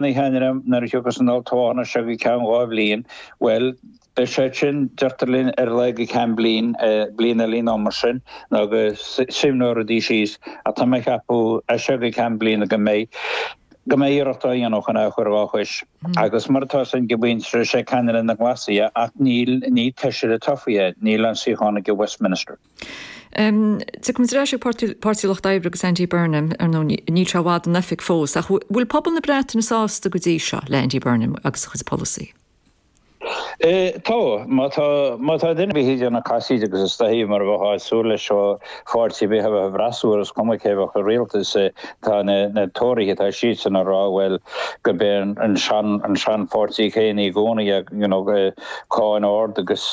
ina cheannaire nuair a thiocfas an olltoghchán as seo go ceann dhá bhliain, bhuel, beidh sé sin, deirtear linn, ar a laghad go ceann bliain, bliain eile nó mar sin, nó go suaimhneoidh rudaí síos, ach tá mé ag ceapadh as seo go ceann bliana go mbeidh, go mbeidh iarracht á dhéanamh chun é a chur dhá chois. Agus mar atá a fhios againn go deimhin is é ceannaire na nGlasach é, ach níl, ní feisire tofa é, níl aon suíochán aige i Westminster. Tiocfaimid ar ais ag Páirtí an Lucht Oibre agus Andy Burnham ar ndóigh níl sé i bhfad in oifig fós ach bhfuil pobal na Breataine sásta go dtí seo le Andy Burnham agus a chuid polasaithe? Tá. Má tá má tá duine ar bith ag déanamh casaoid agus is dóichí mar a bheifeá ag súil leis ó pháirtí ar bith a bheadh sa bhfreasúra is cuma cé bheadh i rialtas tá na na Tóraithe tá siadsan ag rá bhuel gurb é an an sean an seanpháirtí chéanna i gcónaí é you know cáin ard agus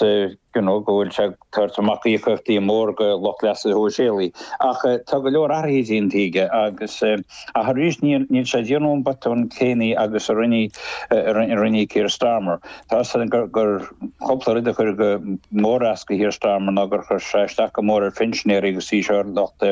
nó go bhfuil sé ag tabhairt amach íocaíochtaí móra do lucht leasa shóisialaigh. Ach tá go leor athruithe déanta aige agus, ach arís, níl sé ag déanamh an botún céanna agus a rinne Keir Starmer. Tá a fhios againn gur cúpla rud a chuir go mór as do Keir Starmer ná gur chuir sé isteach go mór ar phinsinéirí agus arís ar lucht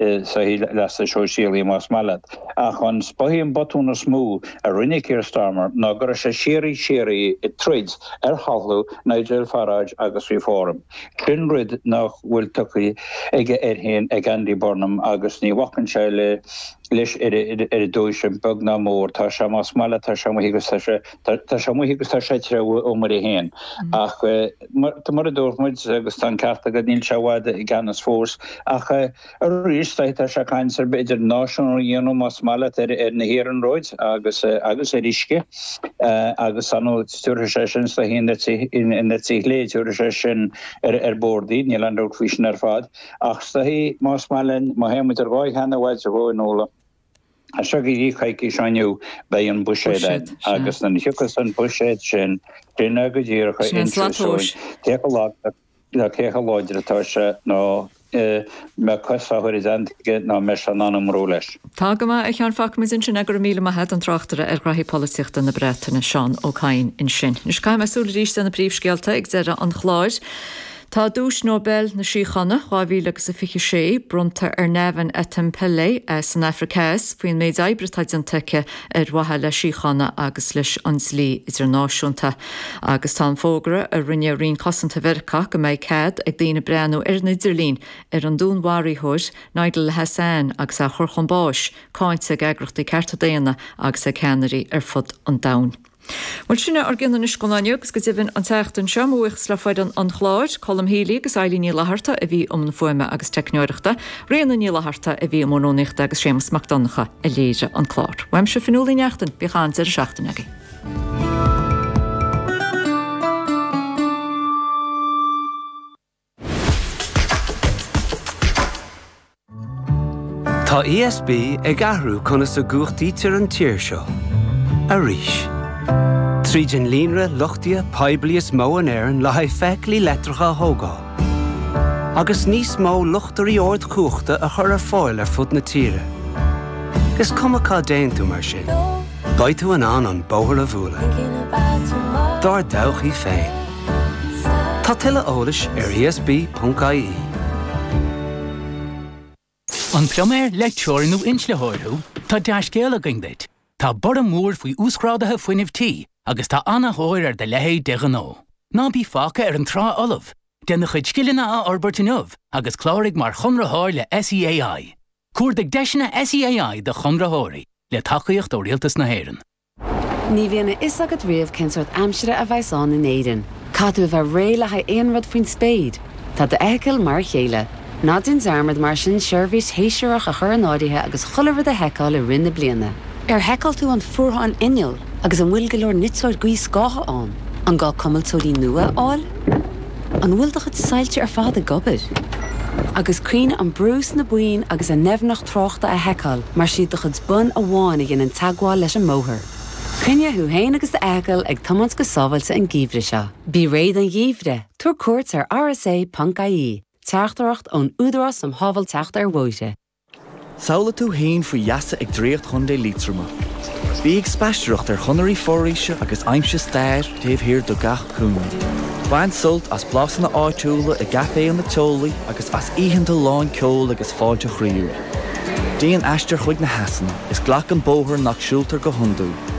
sochair leasa shóisialaigh más maith leat. Ach is dóichí an botún is mó a rinne Keir Starmer ná go raibh sé síoraí síoraí ag troid ar thalamh Nigel Farage agus Reform. Sin rud nach bhfuil tugtha aige air féin ag Andy Burnham agus ní bhacann sé leis ar dtúis, beag ná mór. Tá sé, más maith leat, tá sé amuigh agus tá sé. Tá sé amuigh agus tá sé ag treabhadh a iomaire féin. Ach mar a dúirt muid, agus tá an ceart agat, níl sé i bhfad i gceannas fós. Ach arís, tá sé ag caint ar b'fhéidir náisiúnú a dhéanamh, más maith leat, ar na hiarnróid agus ar uisce. Agus tabharfaidh sé sin isteach an eite chlé, tabharfaidh sé sin ar bord iad, níl aon dabht faoi sin ar fad. Ach más maith leat, má théimid ar dháta nach i bhfad uainn, As seo go dtí coicís ó inniu beidh an Buiséad ann agus nuair a thiocfas an Buiséad sin, sin é go díreach a inseoidh cé chomh lag nó cé chomh láidir atá sé nó an mbeidh cos á chur i dteannta aige nó an mbeidh sé in ann iomramh leis. Tá go maith, a Sheáin, fágfaimid ansin é. Go raibh míle maith agat, an tráchtaire ar ghraithí polaitíochta na Breataine, Seán Ó Cadhain ansin. Anois caithfidh mé súil arís ar na príomhscéalta ag deireadh an chláir. Tá Duais Nobel na Síochána 2026 bronnta ar Navanethem Pillay as an Afraic Theas faoin méid oibre atá déanta aici ar mhaithe le síocháin agus leis an dlí idirnáisiúnta. Agus tá an fógra a rinne Roinn Cosanta Mheiriceá go mbeidh cead ag daoine breathnú ar an idirlíon ar an dúnmharaitheoir Nidal Hasan agus á chur chun báis cáinte ag eagrachtaí cearta daonna agus ag ceannairí ar fud an domhain. Bhuel, sin é ár gcuid anois go Luan agus go deimhin an tseachtain seo, mo bhuíochas le foireann an chláir, Colm Healy agus Eilín Ní Fhlatharta a bhí i mbun fuaime agus teicneoireachta, Ríona Ní Fhlatharta a bhí i mbun rúnaíochta agus Séamas Mac Donncha a léirigh an clár. Uaimse Fionnuala Uí Neachtain, bíodh an-deireadh seachtaine agaibh. Tá ESB ag athrú conas a gcumhachtaítear an tír seo. Arís. Tríd an líonra luchtaithe poiblí is mó in Éirinn le haghaidh feithiclí leictreacha a thógáil, agus níos mó luchtairí ardchumhachta a chur ar fáil ar fud na tíre, is cuma cá dtéann tú mar sin, Beidh tú in ann an bóthar a bhualadh Dár dtodhchaí féin. Tá tuilleadh eolais ar ESB.ie. An pluiméir, leictreoir nó inslitheoir thú? Tá dea-scéal againn duit! Tá borradh mór faoi uasghráduithe fuinnimh tí agus tá an-tóir ar do leithéid de ghnó. Ná bí fágtha ar an trá fholamh! Déan do chuid scileanna a fhorbairt inniu agus cláraigh mar chonraitheoir le SEAI. Cuardaigh deiseanna SEAI do chonraitheoirí, le tacaíocht ó Rialtas na hÉireann. Ní bhíonn a fhios agat riamh cén sórt aimsire a bheas ann in Éirinn. Caithfidh tú a bheith réidh le haghaidh aon rud faoin spéir. Tá d'fheithicil mar a chéile. Ná déan dearmad mar sin seirbhís shéasúrach a chur in áirithe agus chuile rud a sheiceáil i rith na bliana. Ar sheiceáil tú an fuarthán innill? Agus an bhfuil go leor niteoir gaothscátha ann? An gá cuimilteoirí nua a fháil? An bhfuil do chuid soilse ar fad ag obair? Agus cuimhnigh an brú sna boinn agus an doimhneacht tráchta a sheiceáil mar is iad do chuid bonn amháin a dhéanann teagmháil leis an mbóthar. Coinnigh thú féin agus d'fheithicil ag tiomáint go sábháilte an geimhreadh seo. Bí réidh don gheimhreadh, tabhair cuairt ar rsa.ie, Teachtaireacht ón Údarás um Shábháilteacht ar Bhóithre. Samhlaigh tú fhéin faoi gheasa ag Draíocht Chontae Liatroma. Bí ag spaisteoireacht ar chonairí foraoise agus aimsigh stair taobh thiar de gach cúinne. Bain sult as blasanna áitiúla i gcaiféanna teolaí agus as oícheanta lán ceoil agus fáilte chroíúil. Déan aistear chuig na heasanna is glac an bóthar nach siúltar go hiondúil.